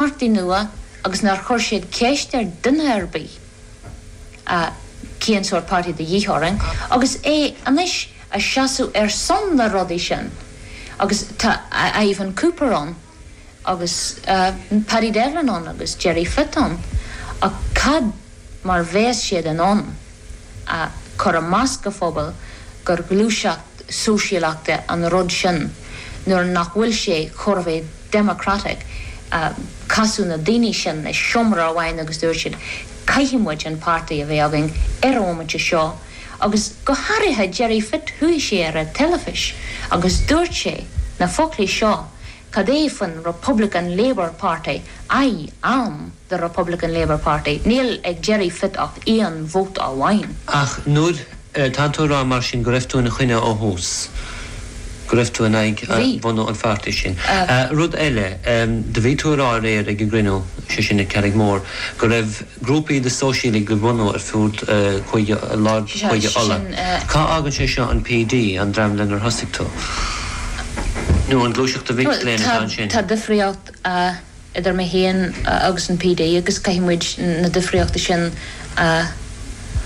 Páirtí nua agus nár chuir siad ceist ar duine ar bith cén sórt páirtí a bhí de dhíth orainn agus é anois ag seasamh ar son na rudaí sin agus tá Ivan Cooper ann agus Paddy Devlin ann agus Gerry Fitt ann ach cad mar a bheas siad in ann a chur i measc an phobail gur gluaiseacht sóisialachta an rud sin nuair nach bhfuil sé chor a bheith democratic. Casadh na daoine sin i seomra amháin agus dúirt siad, caithfidh muid an páirtí a bheith againn ar an bhomaite seo agus go hairithe Gerry Fitt chuaigh sé ar an teilifís agus dúirt sé na foclaí seo, cad é faoin Republican Labour Party, Aye, am. the Republican Labour Party. Níl ag Gerry Fitt ach aon vóta amháin. Ach nuair atá tú ag rá mar sin go raibh tú ina choinne ó thús, go raibh tú in aghaidh bhunú an pháirtí sin. Rud eile, do bhí tú ag rá aréir ag an gcruinniú, sé sin ag Carrigmore, go raibh grúpaí de shóisialaigh ag bunú ar fud Chúige, lár Chúige Uladh. Cá fhágann sé seo an PD, an dream lenar thosaigh tú? Nó an gluaiseacht de mhic léinn atá ansin? Tá difríocht. idir mé féin agus an PD agus caithfidh muid na difríochtaí sin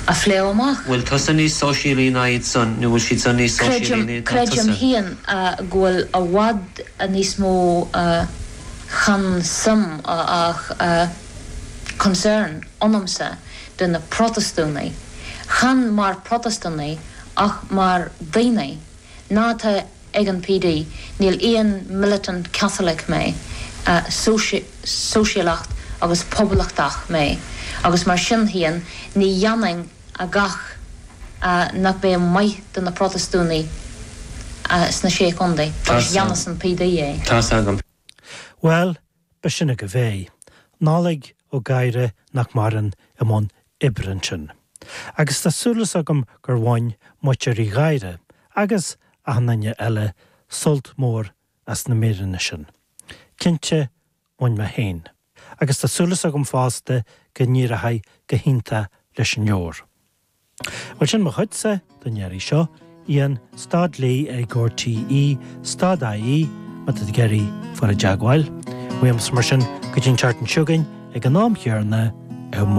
a phlé amach. Bhfuil tusa níos sóisialaí ná iad san nó bhfuil siad san níos sóisialaí ná iad ná tusa? Creidim féin go bhfuil i bhfad níos mó, chan suim ach concern ionamsa de na Protastúnaigh, chan mar Protastúnaigh ach mar daoine, ná atá ag an PD. Níl aon militant Catholic mé, sóisialacht agus poblachtach mé agus mar sin féin ní dhéanfainn a dhath nach mbeidh maith do na Protastúnaigh sna Sé Chontae agus déanfas an PD é. Tá's agam. Bhuel, Ba shin agaibh é. Nollaig Ó Gadhra nach maireann i mbun oibre ansin. Agus tá súileas agam gur bhain muintir Uí Ghadhra, agus achan duine eile, sult mór as na míreanna sin. Cinnte, bhain mé féin. Agus tá súileas agam fosta go n-éireochaidh go hiontach leis an leabhar. Bhuel, sin mo chuidse don iarraidh seo. Ian stad Lee ag RTÉ stad ie, má tá tú ag iarraidh fáil i dteagmháil liom. Mar sin go dtí an tseachtain seo chugainn ag an am chéanna, Eoin.